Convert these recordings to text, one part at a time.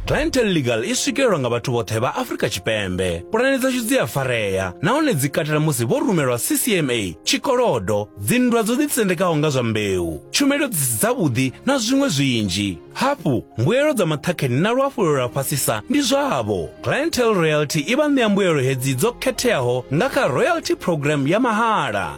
clientele legal i swikelelwa nga vhathu vhoṱhe vha afrika tshipembe pulane dzashu dzi a farea nahone dzi katela musi vho rumelwa ccma tshikolodo dzinndwa dzo ḓitsendekaho nga zwa mbeu tshumelo dzi si dzavhuḓi na zwiṅwe zwinzhi hafhu mbuelo dza maṱhakheni na luhafhulelo lwa fhasisa ndi zwavho clientele royalty i vha ṋea mbuelo hedzi dzo khetheaho nga kha royalty program ya mahala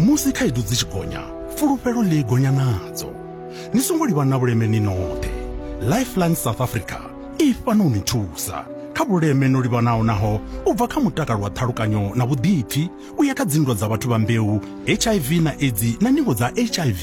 Musi khaedu dzi tshi gonya, fulufhelo ḽi gonya nadzo. Ni songo livha na vhuleme ni noṱhe. Lifeline South Africa i fhano u ni thusa kha vhuleme no livhanaho naho u bva kha mutakalo wa ṱhalukanyo na vhuḓipfi u ya kha dzinndwa dza vhathu vha mbeu, HIV na Edzi na ningo dza HIV.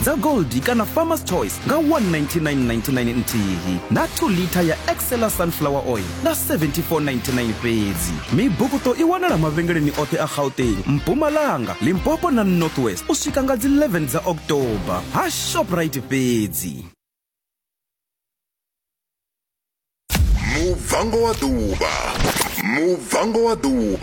dza Goldie kana Farmer's Choice nga 199.99 nthihi na 2 litha ya Excella Sunflower Oil nga 74.99 fhedzi. Mibukuṱo i wanala mavhengeleni oṱhe a Gauteng, Mpumalanga, Limpopo na North West u swika nga dzi 11 dza October ha Shoprite fhedzi. Muvhango wa Ḓuvha Muvhango wa Ḓuvha